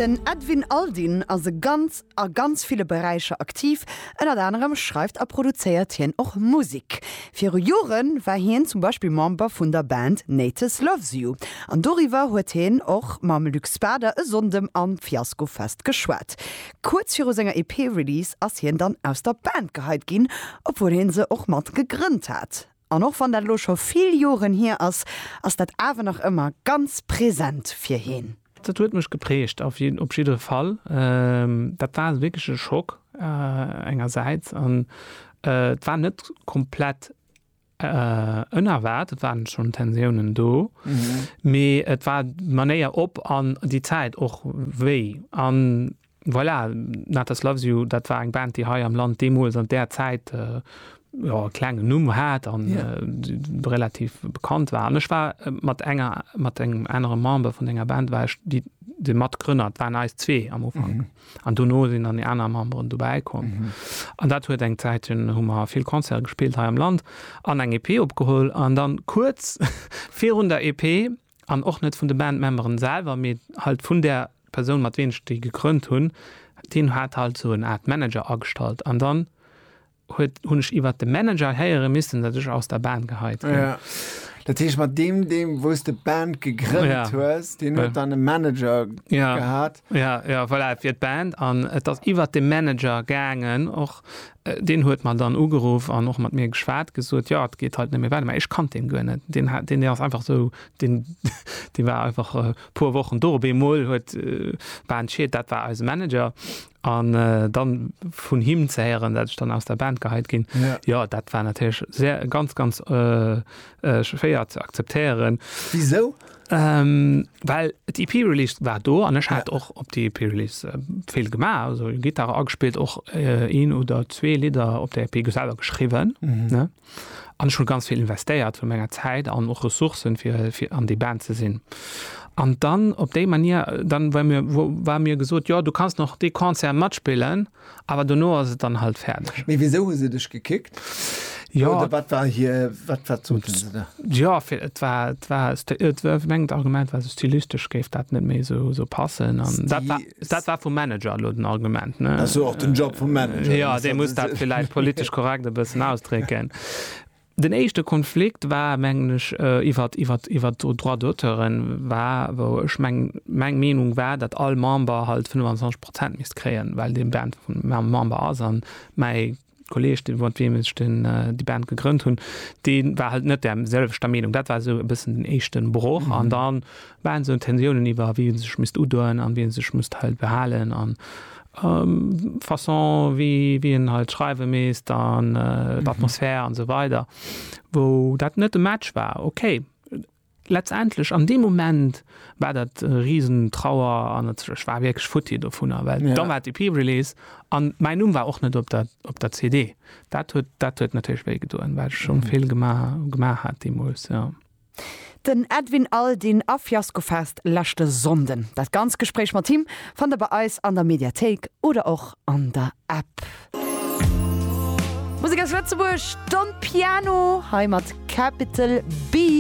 Den Edwin Aldin ass e ganz a ganz ville Beräicher aktiv. Ënnert anerem schreift a produzéiert hien och Musek. Viru Jore war hien zum Beispill Member vun der Band Natus Loves You an doriwwer huet hien och mam Luc Spader e Sonndem am Fiasco Fest geschwat. Kuerz viru senger EP-Release ass hien dann aus der Band geheit ginn, obwuel hie se och mat gegrënnt hat. An och wann dat elo scho vill Joren hier ass, ass dat awer nach ëmmer ganz present fir heen. Dat huet mech geprägt op jiddere Fall. Dat war wierklech e Schock engersäits an et war net komplett ënerwaart, et waren schonn Tensiounen do, mee et war d'Manéier op an déi Zäit och wéi an. Voilà, Natas Loves You, dat war eng Band, déi hei am Land deemools an där Zäit, jo, e klengen Numm hat an relativ bekannt war. An ech war mat enger, mat engem anere Member vun denger Band war ech déi, de Matgrënner, et waren eis zwee am Ufank. An dono sinn dann déi aner Memberen dobäi komm. An dat huet eng Zäit, hunn, hu mer vill Concerte gespillt hei am Land an eng EP opgeholl. An dann kuerz virun der EP An och net vun de Bandmemberen selwer, mee halt vun der Persoun mat ween ech déi gegrënnt hunn. Deen hat halt esou en Art Manager agestallt an dann huet hunn ech iwwert de Manager héiere missen, datt ech aus der Band geheit ginn. Ja. Dat heescht mat deem deem wou s de d'Band gegrënnt hues, deen huet dann e Manager gehat? Ja, ja, voilà, et wier d'Band an et ass iwwert de Manager gaangen och. Deen huet mer dann ugeruff an och mat mir geschwat, gesot, jo, et geet halt net méi weider. Mä ech kannt deen guer net. Deen hat, deen ass einfach esou, deen, dee war einfach e puer Wochen do. Op eemol huet d'Band Schied, dat war eise Manager. An dann vun him ze héieren, dat ech dann aus der Band geheit ginn, jo, dat war natierlech sehr, ganz, ganz schwéier ze akzeptéieren. Wisou? Ähm, well d'EP Release war do an ech hat ja. och op die EP Release äh, vill gemaach also Gitarre agespielt och äh, een oder zwee Lider op der EP geselber geschrieben mhm. ne an schon ganz viel investéiert vu menger Zeit an och Ressourcen fir fir an die Band ze sinn an dann op déi Manier dann war mir wo war mir gesot ja du kannst noch de Konzer matspillen Awer dono ass et dann halt färdeg. Mee wisou hu se dech gekickt? Jo. Oder wat war hier, wat, wat soten se da? Jo, fir et war, et war, et war fir mengen d'Argument war, esou stylistesch géif dat net méi esou, esou passen an dat war, dat war vum Manager elo den Argument, ne? Ass jo och den Job vum Manager. Jo, dee muss dat villäit politesch korrekt e bëssen ausdrécken. Den éischte Konflikt war, mengen ech, iwwert, iwwert, iwwert d'Droits d'auteuren war, wou ech meng, meng Meenung war, datt all Member halt 25 Prozent misst kréien, well dee Band Member ass. A mäi Kolleeg, dee mat deem ech den, déi Band gegrënnt hunn, dee war halt net där selwechter Meenung. Dat war esou e bëssen den éischte Broch. An dann Waren esou Tensiounen iwwer wie en sech misst udoen an wien sech misst hei behalen an Façon wie wie en halt schreiwe misst an d'Atmosphär an sou weider wou dat net e Match war. Ok letztendlech an deem Moment war dat e riesen Trauer an ech war wierklech futti dovunner well da war d'EP-Release an mäin Numm war och net op der op der CD. Dat huet dat huet natierlech wéi gedoen well ech schonn vill gemaach gemaach hat deemools jo. Den Edwin Aldin a Fiasco Fest leschte Sonnden. Dat ganz Gespréich mat him fannt der bei eis an der Mediathéik oder och an der App. Musek aus Lëtzebuerg, Don Piano hei mat Capital B.